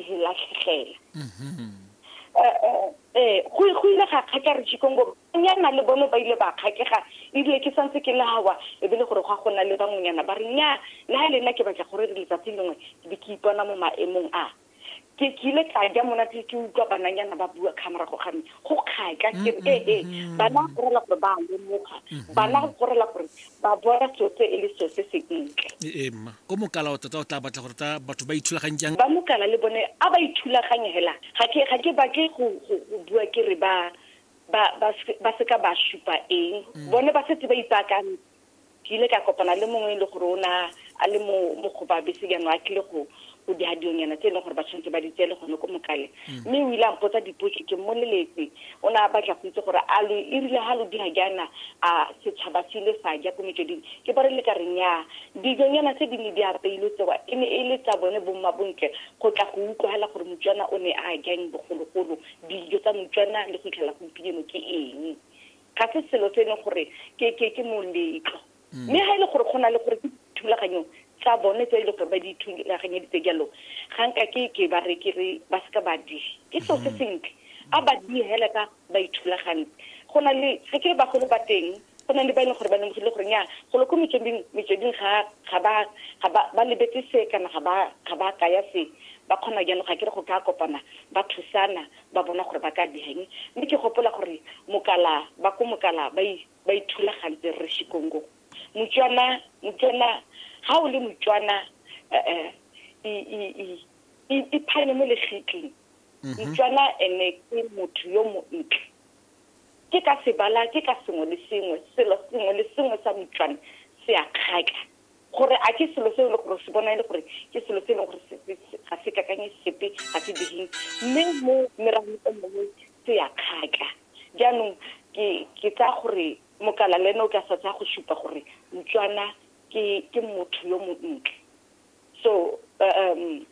re latlhegela mm-hmm. eh, eh, eh, go ile ga kgaka re jikongo nyana le bone ba ile ba kgakega ebile ke santse ke lawa e be le gore go a gona le bangwenyana ba re nya na le nna ke batla gore re letsatsi lengwe ke be ke ipona mo maemong a ke ke ile ka ja monate ke utlwa bananyana ba bua ka morago ga me go kgaka ke re ee bana go rela gore ba lemoga bana go rela gore Ba bona tsotse e le seo se se ntle. Ee, mma. O mokala o tota o tla batla gore ta batho ba ithulaganye jang? Ba mokala le bone a ba ithulaganye hela. Ga ke, ga ke batle go, go, go bua ke re ba, ba, ba, ba seka ba supa eng. Bone ba setse ba ipaakantse. Ke ile ka kopana le mongwe e le gore o ne a le mo, mo go ba bese jaanong a tlile go, o di hadionyana tse e leng gore ba tshwanetse ba di tsele gone ko mokale mm. mme o ile a mpotsa dipotso ke mmoleletse o ne a batla go itse gore a lo e rile ga lo dira jaana a setšhaba se ile sa ja ko metsweding ke ba re le ka re nyaa dijonyana tse di ne di apeilwe tsewa e ne e le tsa bone bomma bontle go tla go utlwagela gore motswana o ne a jang bogologolo dijo tsa motswana le go itlhela gompieno ke eng ga se selo se e leng gore ke moletlo mm. mme ga e le gore go na le gore ke thulaganyo tsa bone tse e le gore ba di thulaganyeditse jalo ga nka ke ke ba re ke re ba seka ba di ke seo se mm. sentle a ba di hela ka ba ithulagantse go na le ga ke ba golo ba teng go na le ba e leng gore ba lemogile gore nya golo ko metsweding metsweding ga ga ba ga ba ba lebetse se kana ga ba ga ba kaya se ba kgona jalo ga ke re go ka kopana ba thusana ba bona gore ba ka diheng mme ke gopola gore mokala ba ko mokala ba ba ithulagantse rre Shikongo Motswana Motswana ha o le Motswana eh, eh, iphanye mo legitleng mhm. Motswana ene ke motho yo montle ke ka sebala ke ka sengwe le sengwe selo sengwe le sengwe sa Motswana se a kgaka gore a ke selo se e le gore se bona e le gore ke selo se e leng gore ga se kakanye sepe ga se digeng mme mo meragong e mongwe se ya kgaka jaanong ke tsaya gore mokala le ene o ka sa tsaya go supa gore motswana ke motho yo montle so um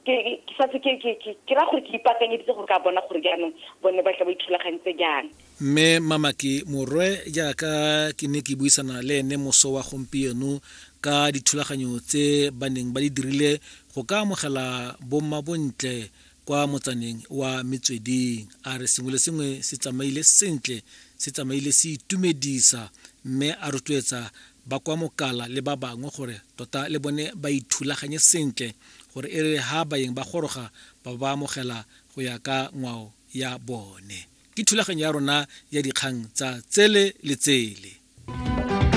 ke sa se ke ke ke ra gore ke ipaakanyeditse gore ka bona gore jaanong bone ba tla ba ithulagantse jang mme mamaki morwe jaaka ke ne ke buisana le ene moso wa gompieno ka dithulaganyo tse ba neng ba di dirile go ka amogela bomma bontle kwa motsaneng wa metsweding a re sengwe le sengwe se tsamaile sentle se tsamaile se itumedisa mme a rotloetsa ba kwa Mokala le ba bangwe gore tota le bone ba ithulaganye sentle gore e re ha baeng ba goroga ba bo ba amogela go ya ka ngwao ya bone. Ke thulaganyo ya rona ya dikgang tsa tsele le tsele.